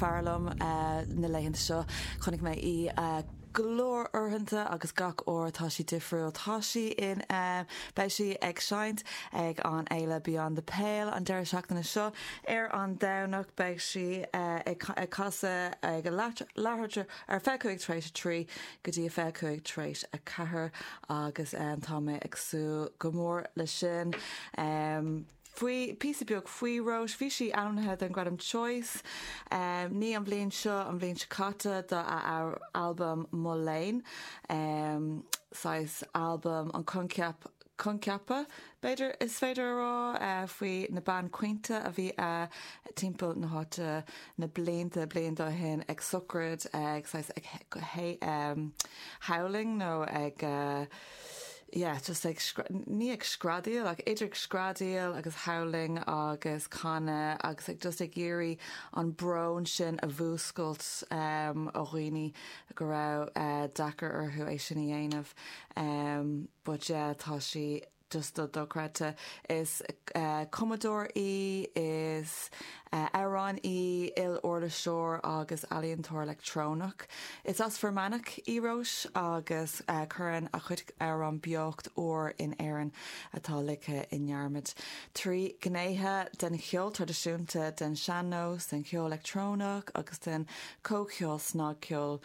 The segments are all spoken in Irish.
fearr liom na laethanta seo. Chonaic mé í go leor uaireanta agus gach uair tá sí difriúil. Tá sí in ann, beidh sí ag seinnt ag an fhéile Beyond the Pale an deireadh seachtaine seo. Ar an Domhnach beidh sí ag casadh ag an Larcher ar fiche cúig tar éis a trí go dtí fiche cúig tar éis a ceathair agus tá mé ag súil go mór leis sin. Faoi píosa beag faoi Róis, bhí sí ainmnithe don gradam Choice, ní an bhliain seo, an bhliain seo caite, do a albam Mo Léan, saghas albam an coincheap, coincheapa, b'fhéidir, is féidir a rá, faoi na bean caointe a bhí a timpeall na háite na blianta blianta ó shin ag sochraid, ag, saghas, ag howling nó ag, yeah just ag ní ag screadaíl ach idir ag screadaíl agus howling agus canadh agus ag just ag iarraidh an brón sin a mhúscailt ó dhaoine go raibh deacair orthu é sin a dhéanamh but yeah tá sí just go dochreidte. Is cumadóir í is Amhránaí, iluirliseoir agus ealaíontóir leictreonach is as Fear Manach í Róis agus cuireann a cuid amhrán beocht úr in Éirinn atá ligthe i ndearmad. Trí ghnéithe den cheol traidisiúnta, den sean-nós, den cheol leictreonach agus den chomhcheol snagcheoil,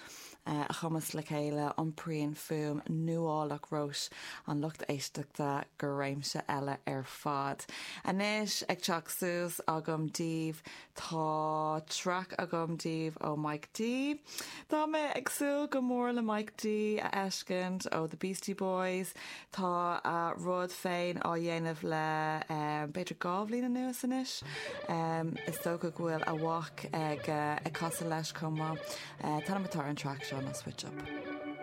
a chumasc le chéile, iompraíonn fuaim nuálach Róis an lucht éisteachta go réimse eile ar fad. Anois, ag teacht suas agam daoibh, tá traic agam daoibh ó Mike D. Tá mé ag súil go mór le Mike D a fheiscint ó The Beastie Boys, Tá a rud féin á dhéanamh le b'fhéidir dhá bhliain anuas anois. Is dócha go bhfuil a mhac ag casadh leis chomh maith. An t-ainm atá ar an traic seo ná Switch Up.